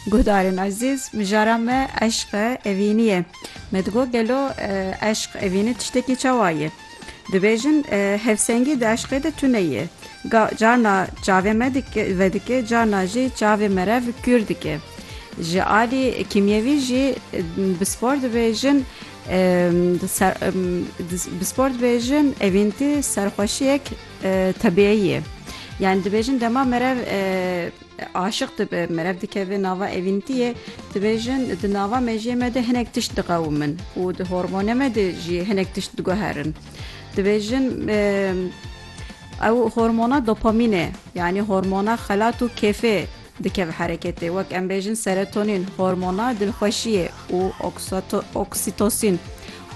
Guhdarên ezîz, mijara me eşq e, evînî ye. Me digot gelo eşq, evînî tiştekî çawa ye? Dibêjin hevsengî di eşqê de tune ye. Ga carna çavê me vedike, carna jî çavê merev kûr dike. Ji alî kîmyewî jî bi spor dibêjin bi spor dibêjin evîntî serxweşiyek Tebiyeyê. Yani dibêjin dema merev aşiq dibe, merev dikeve nava evîntiyê, dibêjin di nava mejiyê me de hinek tişt diqewimin û di hormone me de jî hinek tişt diguherin. Dibêjin ew hormona dopamîn e, yani hormona xelat û kêfê dikeve hereketê wek em bêjin serotonin, hormona dilxweşiyê û oksîtosîn,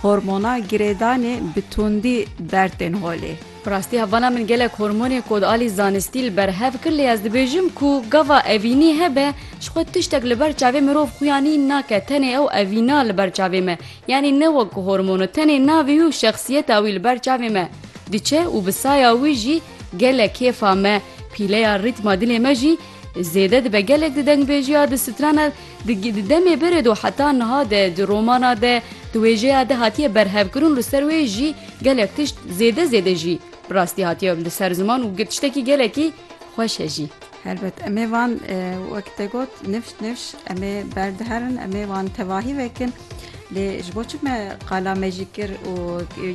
hormona girêdanê bi tundî derd tên holê. Bi rastî hevana min gelek hormonê ku di alî zanistî li ber hev kir lê ez dibêjim ku gava evînî hebe ji xwe tiştek li ber çavê mirov xuya nîn nake tenê ew evîna li ber çavê me Yanî ne wek ku hormono tenê navê û şexsiyeta wî li ber çavê me diçe û bi saya wî jî gelek kêfa me, pîleya rîtma dilê me jî zêde dibe. Gelek di dengbêjiya, di strana, di di demê berê de û heta niha de di romana de, di wêjeya de hatiye berhevkirin û li ser wê jî gelek tişt zêde zêde jî bi rastî hatiye li ser ziman û tiştekî gelekî xweş e jî. Helbet em ê van wek te got nifş nifş em ê berdiherin em ê wan tevahî vekin lê ji bo çi me qala me jî kir û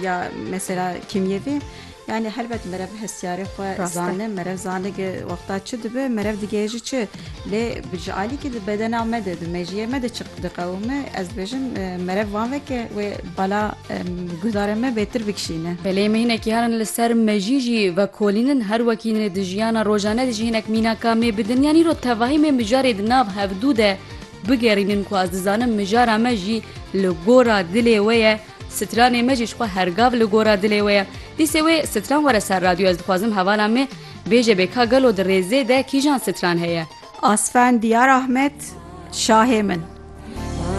ya mesela kîmyevî yani helbet merev hesyarê xwe zane merev zane ki wexta çi dibe merev digehê jî çi lê ji alî ki di bedena me de di mejiyê me de çi Diqewime ez dibêjim merev wan veke wê bala guhdarê me bêtir bikişîne. Belê me hinekî herin li ser me jî jî vekolînin her wekî nê di jiyana rojane de jî hinek mînaka me bi dinya nîn û tevahî me mijarê di nav hevdû de bigerînin ku ez dizanim mijara me jî li gora dilê we ye. Stranê me jî ji xwe her gav li gora dilê we ye. Dîsê wê stran were ser radyo ez dixwazim hevala me bêje bê ka gelo di rêzê de kîjan stran heye. Asfan Diyar Ahmed şahê min.